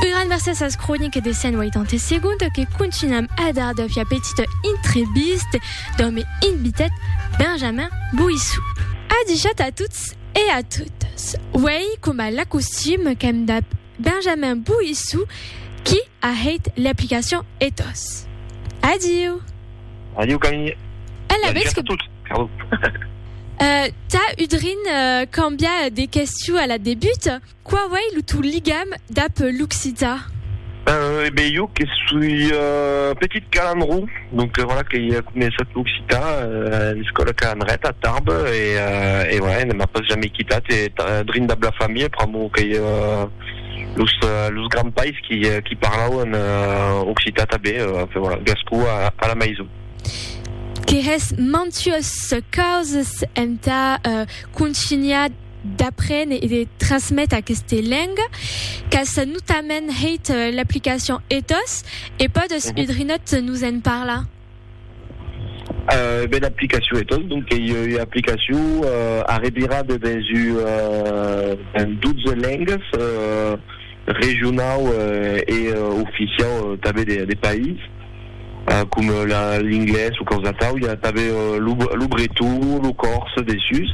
Un gran mercés as croniques de 180 segondes que continuam a dar de fia petite intreviste d'òme invitat Benjamin Boissou. Adichat a tots e a totes, uèi coma l'acostum qu'èm dab Benjamin Boissou qui a hèit l'aplicacion Ethos. Adiu! Adiu Camille! Ela vètz que... Tà udrin cambiar de questiu a la debut. Qu'a uèi lo tò ligam dab l'occitan? Eh ben, jo que soi petit calandró, donc voilà que i a començat l'occitan a l'escòla Calandret a Tarbes e voilà, e ne m'a pas jamei quitat e drin dab la familha pr'amor que i a los grands pais qui parlauan occitan tanben, enfin voilà, gascó a la maison. Que hès mantuós causas entà contunhar. d'apren e de trasmet aqueste leng qu'as notament hèit l'aplicacion ethos e pòdes un drinòt nos en parlar? Ben aplicacion ethos donc ei ua aplicacion arrevirada dens un 12 lengas regionau e oficiau tanben de país coma l'inglés o causatau, i a tanben lo breton, lo còrse dessús.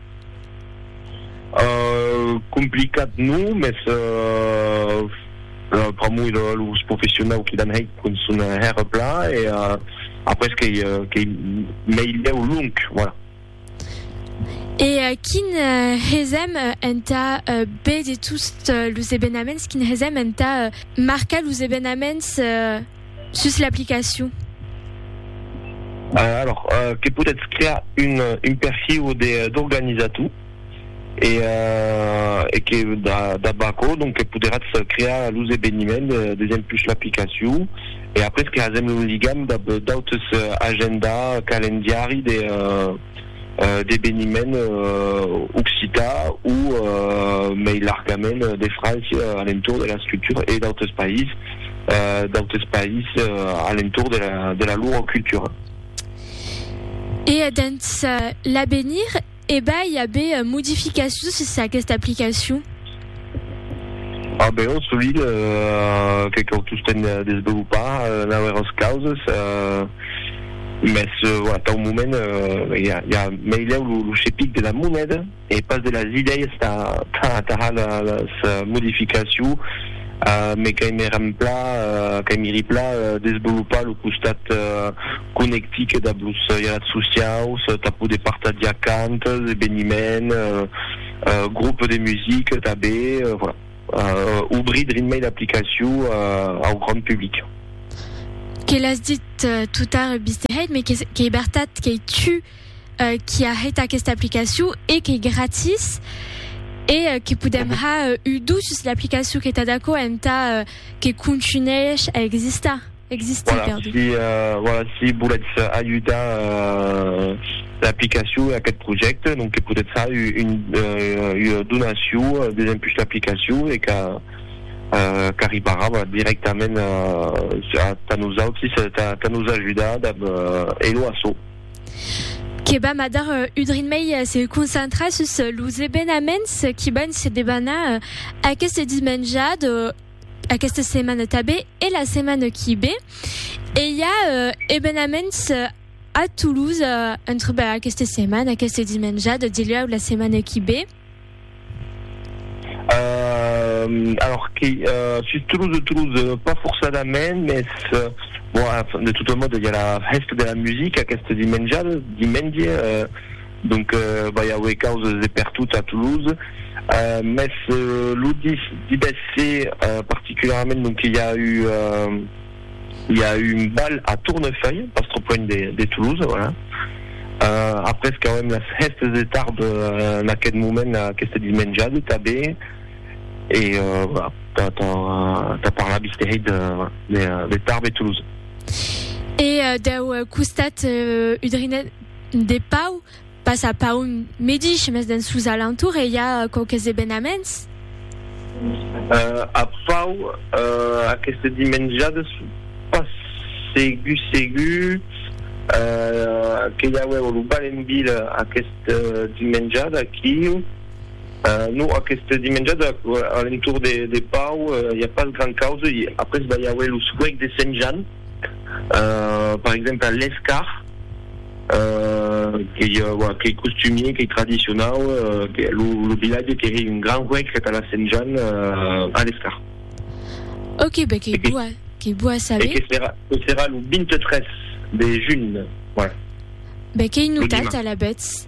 Complicat non, mès pr'amor de los professionau qui l'an hèit con son hèr plan e après qu'ei meilhèu long, voilà. E quin hesèm entà be de tots los evenaments, quin hesèm entà marcar los evenaments? Sus l'aplicacion. Alors, que podètz crear un, un perfiu de, d'organizator, e, e que dab aquò, donc, que poderatz crear los eveniments desempl sus l'aplicacion, e après creasèm un ligam dab d'autres agenda, calendiari de, d'eveniment occitan o mei largament de França a l'entorn de l'escritura e d'autres país, d'autres país a l'entorn de la lor cultura. E dens l'avenir, e vai aver modificacions sus aquesta aplicacion? A beau solid, que cau tostemp desvelopar naueras causes, mès tau moment i a meilèu lo chepic de la moneda e pas de las idèias tà las modificaciu, me cai me rempla, cai me ripla desvelopar lo costat conectic dab los ialats sociaus tà poder partagiar cantes, eveniments, Groupe de musique tanben, voilà. Obrir drin mei l'aplicacion au grand public. Que l'as dit tout tard Bisteheit, mais qu'ei bertat qu'ei tu qui a hèit aquesta aplicacion e qu'ei gratis e que podem har udus l'aplicacion que tà d'aquò entà que contunhèish a existar. Existir, voilà, perdut. Si, uh, voilà, si volètz ajudar uh, l'aplicacion e aquest projècte, donc que podètz far un, uh, una donacion desempus l'aplicacion e que uh, qu'arribarà voilà, directament uh, a, a nosaltres, a, a nos ajudar dab uh, Elo Asso. Que va madar uh, udrin mei uh, se concentrar sus uh, los ebenaments qui van se debanar uh, aquest dimenjat uh, aquesta setmana tabé e la setmana qui bé e i a uh, ebenaments uh, a Toulouse uh, entre bah, aquesta setmana, aquesta dimenjada, dilhau la setmana qui bé. Euh, alors, qui, euh, sur Toulouse, Toulouse, euh, pas forcément, mais euh, bon, de toute mode, il y a la fête de la musique, à Castel dimension, dimension, euh, Donc vai auer causes de pertot a Toulouse, mès lo divèsse particularament donc que i a eu i a eu un bal a Tournefeuille, pas trop loin de Toulouse, voilà. Après qu'auem las hèstes de tarde en aquest moment, aquesta dismenjada tanben, e voilà, tà parlar visquèri de Tarbes e Toulouse. E deu costat, Udrinè. De pau, pas a Paun medish, mes dens sos alentours e i a quauques evenaments. A Pau, aqueste dimenjades, pas segur segur que i auèu lo bal en vila aqueste dimenjade aquiu. Non, aqueste dimenjade a l'entorn de de Pau i a pas grand causa. Après va i auer lo suec de Sent Jan, per exemple a l'Escar. qu'ei costumier, qu'ei tradicionau, lo vilatge que hei un gran huec entà la Sent Jan a l'escar. Ok, ben qu'ei bo a, qu'ei bo a saber. E que serà, que serà lo 23 de junh, voilà. Ben qu'ei notat alavetz.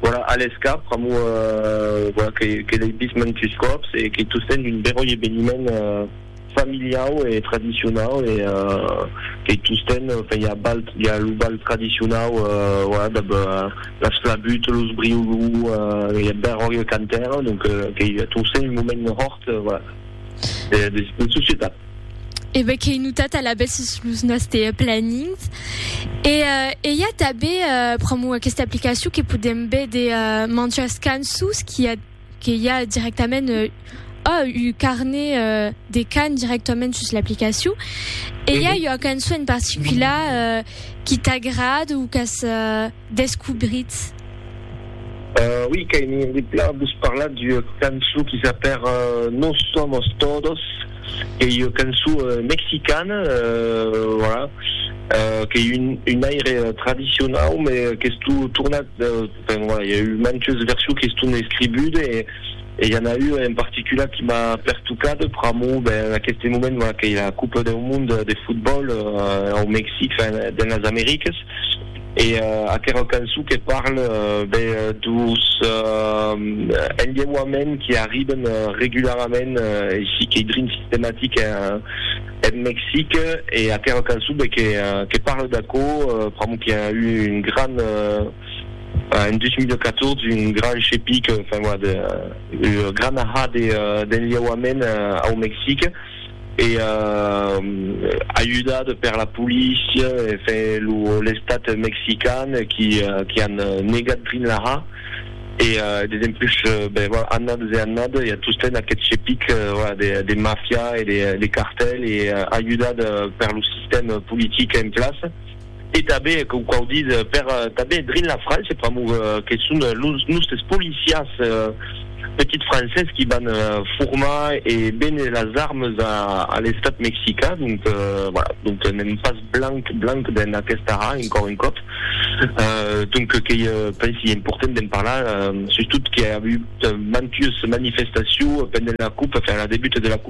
Voilà, a l'escap, pr'amor voilà que que l'ei vist mantus còps e qu'ei tostemps un beròi eveniment familiau e tradicionau e qu'ei tostemps enfin i a bal i a lo bal tradicionau voilà dab las flabuts, los briolou, i a beròi e cantèr donc qu'ei tostemps un moment hòrt voilà de societat. e be qu'ei notat alabèth sus los nòste planings. E, e i a tanben pr'amor aquesta aplicacion que podem véder manjas cançons qu'i a que i a dirèctament ò un carnet de can dirèctament sus l'aplicacion. E i a ua cançon en particular qui t'agrad o qu'as descubritz? Ui, qu'ai envie de plan vos parlar d'ua cançon qui s'apèr Nos somos todos, qu'ei ua cançon mexicana, voilà, qu'ei un aire tradicionau, me qu'estó tornat, enfin voilà, i a eu mantes versions qui estón escribudes, e i en a ua en particular qui m'a pertocat, pr'amor, ben, en aqueste moment, voilà, qu'ei la Copa deu Monde de Fotbòl au Mexic, enfin, dens las Americas. E aquera cançon que parle be dus enlheuaments qui arriben regularament aicí qu'ei drin sistematic en Mexic e aquera cançon be que parle d'aquò pr'amor qui a eu un gran en 2014 un gran chepic enfin voilà de gran ahà d'enlheuaments au Mexic. e ajudat per la polícia e l'estat mexican qui an negat Greenlaha e dempuish annades e annades i a tostemps aquest chepic de mafia e de cartel e ajudat per lo sistèm politic en plaça. e tanben com quau dit per tanben drin la França pr'amor que son los nustes policiers petits francés qui van formar e béner las armes a l'estat mexicain donc voilà donc n'èm pas blanc blanc dens aquesta ha encor un còp donc qu'ei pensi important d'en parlar sustot que i a avut mantues manifestacion pendent la cup enfin la debut de la cup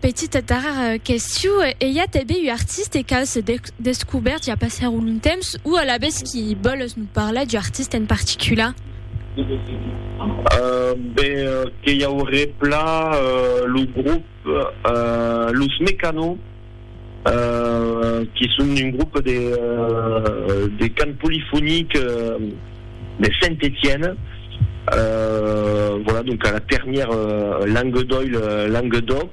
Petita darrèra question, e i a tanben un artiste qu'a se descobèrt ja passèr un long temps, o alavetz qui vòles nos parlar d'un artiste en particular? Ben, que i auré plan lo grop Los Mecano. qui son un groupe de de cant polyphonique de Saint-Étienne, voilà donc à la ternière langue d'oïl le langue d'oc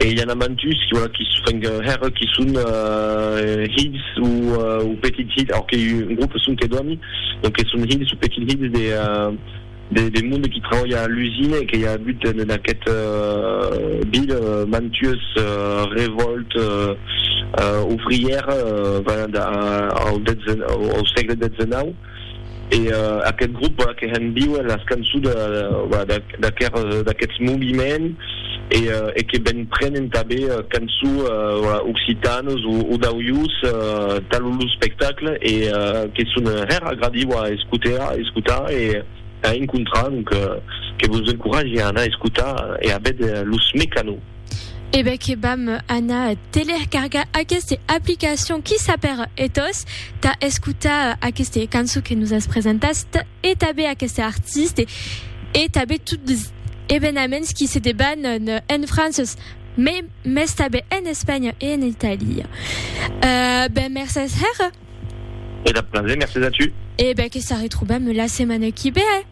et il y en a mantus voilà qui enfin que hèr qui son hilhs ou petits hilhs, alors que un groupe son que dòmi, donc que son hilhs ou petits hilhs de De monde qui trabalha a l'usina e que i a agut en aquest bill mantues revòltes ouvrières venent au sègle xix. E aquest grop que hèn viu en las cançons d'aquests moviments. e que ben prenen tanben cançon occitanes o d'aujos tan lo spectacle e que son hèr agradiu a escotar e a encontrar donc que vos encoratge a anar escotar e a véder los Mecano. E ben que vam anar telercargar aqueste aplicacion qui sap hèr ethos tà escotar aqueste cançon que nos as presentat e tanben aqueste artiste e tanben tot evenaments qui se debanan en França, mai mès tanben en Espanha e en Itàlia. Eh ben, mercés hèr. E dab plaser, mercés a tu. E ben, que s'arretrobam la setmana qui ve.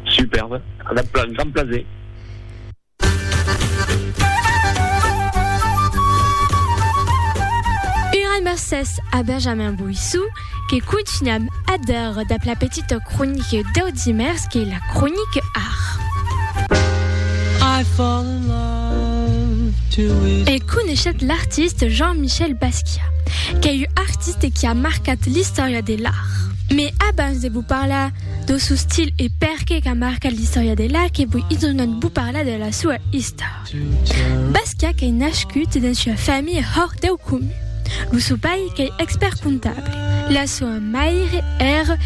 Superb, dab grand plaser. Un grand mercés a Benjamin Boissou. que contunham ader dab la petita cronique dau dimèrs qu'ei la cronique art. E coneishetz l'artiste Jean-Michel Basquiat, qu'ei ua artiste qui a marcat l'istòria de l'art. Me abans de vos parlar dau sou stil e perqué qu'a marcat l'istòria de l'art que voi idonat vos parlar de la soua istor. Basca qu'ei nascut dens ua familha hòr deu comun. Lo sò pair qu'ei expèrt comptable. La soa maire ère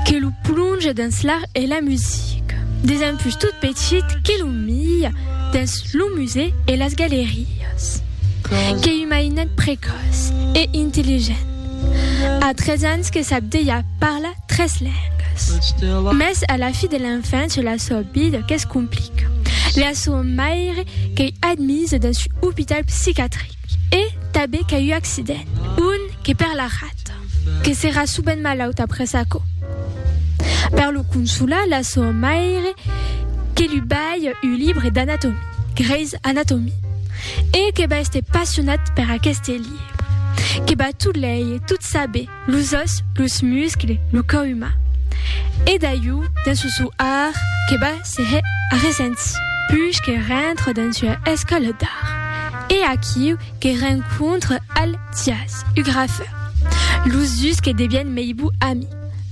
que lo plonge dens l'art e la musica. Desempús tot petit que lo mia dens lo musèu e las galerias. Qu'ei un mainet precòç e intelligent. A tres ans que sap dejà parlar tres lengas. Mès a la fi de l'enfància la sua vida que's complica. La sua maire qu'ei admisa dens un opital psicatric e tanben qu'a un accident, un que per la rata, que serà subent malauta après aquò. Per lo consolar, la sua maire que lu balha un libre d'anatomia, Grey's Anatomy, e que va èster passionat per aqueste libre, que va tot leir, tot saber, los òs, los muscles, lo còu uman. E d'aiu, dins lo sou ar, que va se hè arresents. Puish que rentre dins ua escòla d'ar, e aquiu que rencontre al Thias, u grafeur. Los dus que devièn mei bou ami.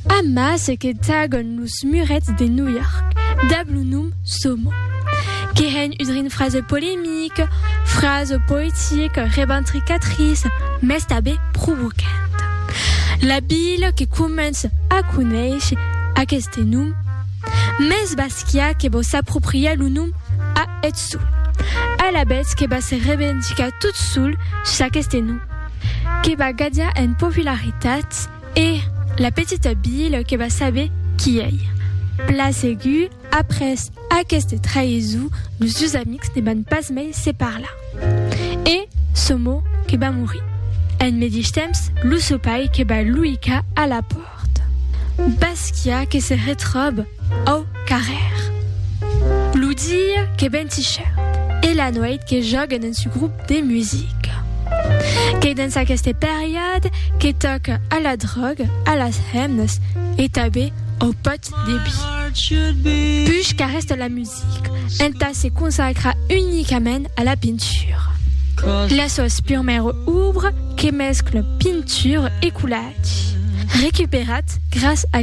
Amas que tagon los. Los murets de New York, dab lo nom Somo, que hèn un rin fraze polemic, fraze poetic, reventricatriç, mès tabé provocant. La vila que comence a conéisher aqueste nom, mès Basquiat que vò s'apropriar lo nom a eth sol, alavetz que va se revendicar tot sol s'aqueste nom, que va gadiar en popularitat, E la petita Bill que va saber qui ei. Pla segur, après aqueste traïsou, los dus amics ne van pas mai se parlar. E Somo que va morir. En medish temps, lo seu pair que va luicar a la pòrta. Basquiat que se retròbe au carrèr. Lo dia que ven si chèrt e la nuèit que jòguen en su grop. de musica. Qu'ei dens aqueste periòde que tòca a la dròga, a las hemnas e tanben au pòt de bi. Puish qu'arrèsta la musica entà se consacrar unicament a la pintura. Las suas purmèras obras que mesclan pintura e colatge, recuperat gràs a.